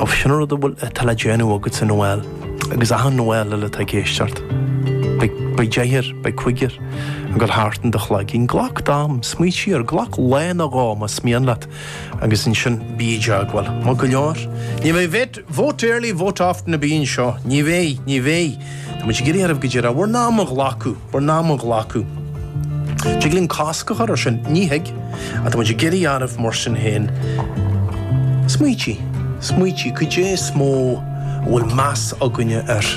Óbh sin an rud a bhfuil atá le déanamh agatsa Noel agus achan Noel eile atá ag éisteacht. Beidh, beidh deichniúr, beidh cúigear ag dul thart in do chloigeann. Glac d'am, smaoitigh air, glac lá nó dhó más mian leat agus ansin bí i dteagmháil. Maith go leor. Ní bheidh vet, vote early, vote often a bhí anseo. Ní bheidh, ní bheidh. Tá muid ag iarraidh oraibh go díreach bhur n-am a ghlacadh. bhur n-am a ghlacadh. Tig linn cosc a chur ar sin, nach dtig? Tá muid ag iarraidh oraibh mar sin féin? smaoitiú, smaoitiú, cad é is mó a bhfuil meas againne air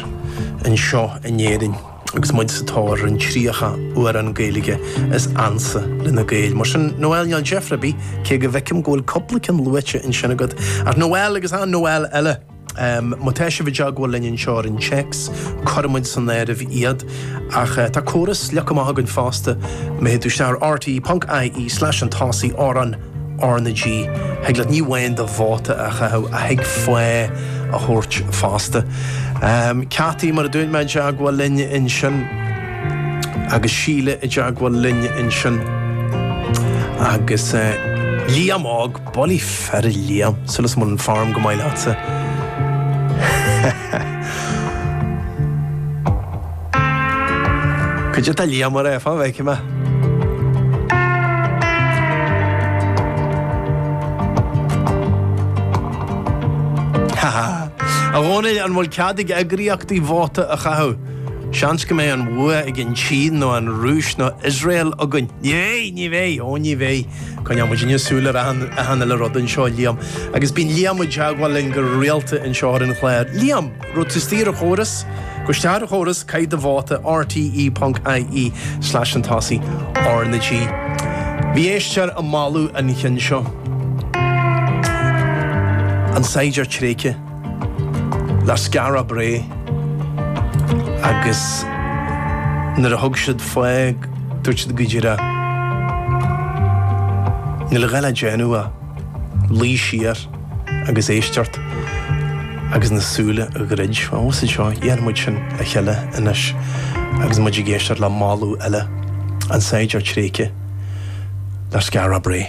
anseo in Éirinn agus muid sa tóir ar an 30 amhrán Gaeilge is ansa leis na Gaeil? Mar sin, Noelle níl deifre ar bith, cé go bhfeicim go bhfuil cúpla ceann luaite ansin agat, ach Noelle agus an Noelle eile! Má tá sibh i dteagmháil linn anseo ar an téacs, cuirfidh muid san áireamh iad. Ach tá córas slíoctha maith againn fosta, má théann tú isteach ar rte.ie slash an tÁsaí amhrán, R na G, thig leat ní amháin do vóta a chaitheamh ach thig fáth a thabhairt fosta. Caití, mar a dúirt mé, i dteagmháil linn ansin, agus Síle i dteagmháil linn ansin, agus Liam óg, Bulaí fir a Liam, súil is go bhfuil an form go maith leatsa. Cad é tá Liam a rá, fan go bhfeicfidh mé. A Dhónaill, an bhfuil cead ag eagraíochtaí vóta a chaitheamh? Seans go mbeidh an bhua ag an tSín nó an Rúis nó Iosrael againn. Ní bheidh, ní bheidh, ó ní bheidh. Coinneoidh muidinne súil ar achan uile rud anseo, a Liam. Agus bíonn Liam i dteagmháil linn go rialta anseo ar an chlár. Liam, gabh tusa ar an chóras, gabh isteach ar an chóras, caith do vóta, rte.ie slash an tosaí, R na G. Bhí éisteoir ag moladh an chinn seo. An saighdiúir tréigthe. Le Skara Brae agus nuair a thug siad fáth dúirt siad go díreach níl a dhath le déanamh ach luí siar agus éisteacht agus na súile a dhruid. Ós é seo, dhéanfaidh muid sin le chéile anois agus muid ag éisteacht le moladh eile an saighdiúir tréigthe le Skara Brae.